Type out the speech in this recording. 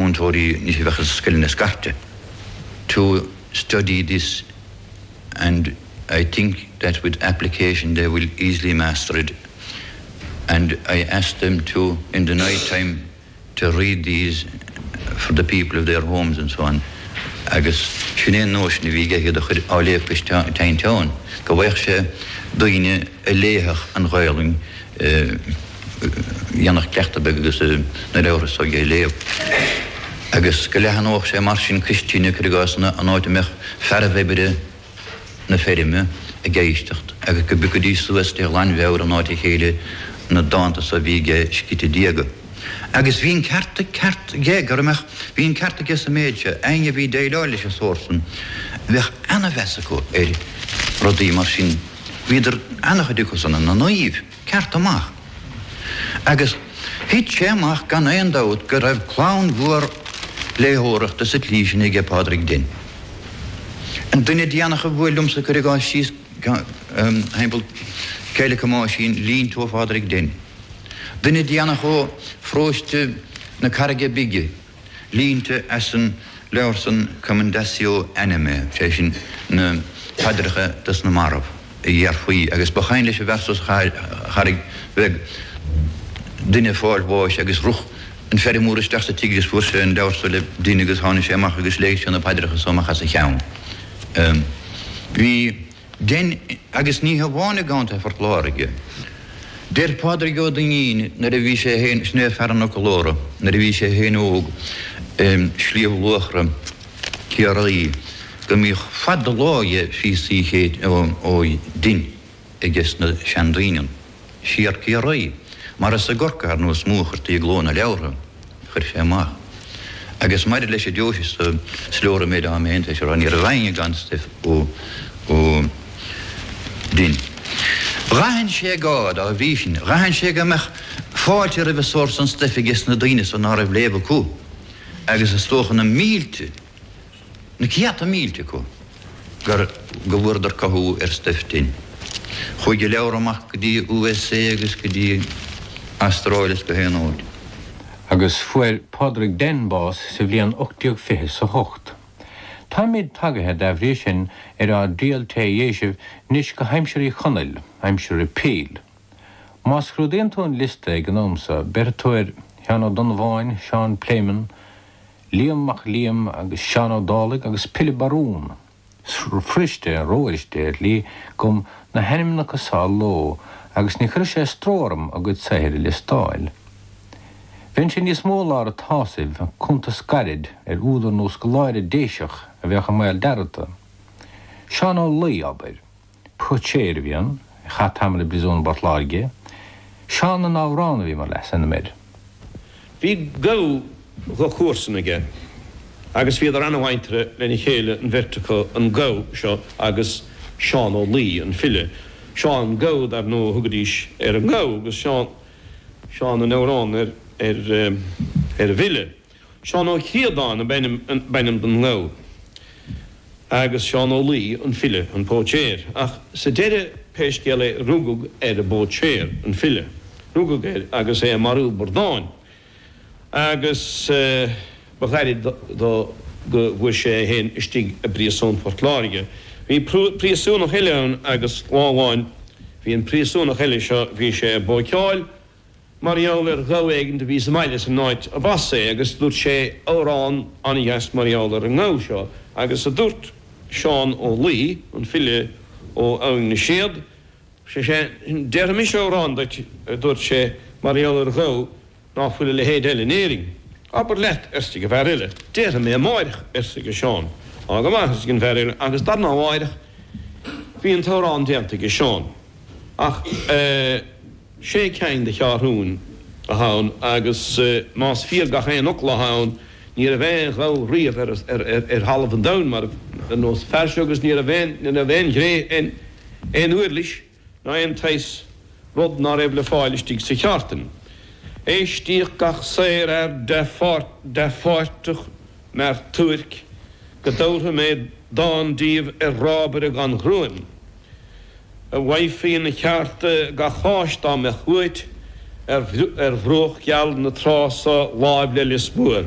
múinteoirí níos a bheadh i scoileanna scairte to study this and I think that with application they will easily master it and I ask them to in the night time to read these for the people of their homes and so on agus sin é an nóisean a bhí aige iad a chur á léamh go teineann go bhfaigheadh sé daoine a léifeadh an Ghaolainn dhéanfadh cleachtadh beag agus na leabhartha so dhe a léamh. Agus go leathanódh sé mar sin cois tine, cuir i gcás, an áit a mbeadh fearaibh oibre na feirme ag éisteacht, agus go bpiocfaidís suas de ghlanmheabhair in áit a chéile na dánta so a bhí aige scríte diaga. Agus bhí an ceart aige, gur mbeadh, bhí an ceart aige sa méid seo, éinne a bhí ag déileáil leis an sórt san, bheadh ana-mheas acu ar rudaí mar sin. Bhíodar ana-chuid acu san ina naoimh. ceart amach. Agus thit sé amach gan aon dabht go raibh clann mhór léitheoireachta sa tslí sin aige Pádraig Denn. An duine déanach a bhuail liomsa cuir i gcás síos thimpeall Choill Mhic Thomáisín línte ó Phádraig Denn. Duine déanach ó Phróiste na Carraige Bige. Línte as an leabhar san Commendatio Animae, sé sin na paidreacha dos na mairbh, a déarfaí agus ba chuimhin leis a bheith sa Charraig Bheag duine ag fáil bháis agus rith an feirmeoir isteach sa tigh agus fuair sé an leabhar so le Denn agus tháinig sé amach agus léigh sé na paidreacha so amach os a cheann. Bhí. Denn, agus ní hamháin i gContae Phort Láirge. Deir Pádraig Ó Duinnín nuair a bhí sé fhéin sna Fear an Fhoclóra, nuair a bhí sé fhéin óg i Sliabh Luachra, Ciarraí, go mbíodh fad do lámha dhe phíosaí ó Denn aige sna seandaoine. Siar Ciarraí, mar is i gCorcaigh ar ndóigh is mó a chuirtí i gcló na leabhartha, a chuir sé amach. Agus maidir leis an deoise so, is leor an méid ama a d'fhan sé ann, ní raibh aoinne gan stuif ó Denn. Dh'aithin sé gá, dá bhrí sin, dh'aithin sé go mbeadh fáilte roimh an sórt san stuif age's na daoine so ná raibh léamh acu, agus is dócha na mílte, na céadta mílte acu gur, go bhfuaradar cothú ar stuif Denn. Chuaigh a leabhar amach go dtí U.S.A. agus go dtí an Astráil is go haon áit. Agus fuair Pádraig Denn bás sa bhliain ocht déag fiche is a hocht. Táimíd tagaithe, dá bhrí sin, ar ár dtriail tré Dhéisibh 'nois go haimsir Uí Chonaill, aimsir Repeal. Má scrúdaíonn tú an liosta ag an am so, béarfaidh tú ar Sheán Ó Donnabháin, Seán Pléimeann, Liam Mac Liam agus Seán Ó Dálaigh agus Pilib Barún. Is fuiriste, fuiriste, ar shlí, dhom na hainmneacha so a lua agus ní chuirfeadh sé stró orm a gcuid saothair a liostáil. Bheinnse níos mó i lár a tsásaimh ag cuntas gairid ar údar nó scoláire Déiseach a bheadh i mbaol dearmadta. Seán Ó Laoi, abair. Póitséir a bhí ann, a chaith tamall i bpríosún i bPort Láirge. Seán na nAmhrán a bhí mar leasainm air. Bhí gabha de chomharsan aige agus bhíodar ana-mhuinteartha lena chéile an bheirt acu, an gabha seo agus Seán Ó Laoi, an file. Seán Gabha dar ndóigh a thugaidís ar an ngabha agus Seán, Seán na nAmhrán ar an bhfile. Seán Ó Críodáin ab ainm don ngabha agus Seán Ó Laoi an file, an póitséir. Ach sa deireadh pé scéal é rugadh ar an bpóitséir, an file, rugadh air agus é ag marú bradán agus ba ghairid do go bhfuair sé é féin istigh i bpríosún Phort Láirge. Bhí príosúnach eile ann agus lá amháin bhí an príosúnach eile seo, bhí sé ag bóiceáil, Mar gheall ar ghabha éigin do bhí sa mbaile san áit arb as é agus dúirt sé amhrán an-dheas mar gheall ar an ngabha seo agus a dúirt Seán Ó Laoi, an file ó Abhainn na Séad, sé sé, déarfaidh mise amhrán duit a dúirt sé mar gheall ar ghabha ná fuil a leithéid eile in Éirinn. Abair leat arsaigh an bhfear eile. Déarfaidh mé amáireach arsaigh Seán. Á go maith arsaigh an bhfear eile agus lar na mháireach bhí an t-amhrán déanta aige Seán ach eh. Sé cinn de cheathrúna athá ann agus más fíor gach aon fhocal athá ann ní raibh aon ghabha riamh ar thalamh an domhain mar ar nós fear seo agus ní raibh aon ghné, aon úirlis ná aon tsaghas rud ná raibh le fáil istigh sa cheártain. Éistíodh gach sárfhear dea-pháirteach mear suairc go dtabharfaidh mé dán díbh ar rábaire gan ghruaim. Bhfaighfí ina cheárta gach áis dá mbeadh uait, ar bhruach gheal na trá so, láimh le Lios Mór.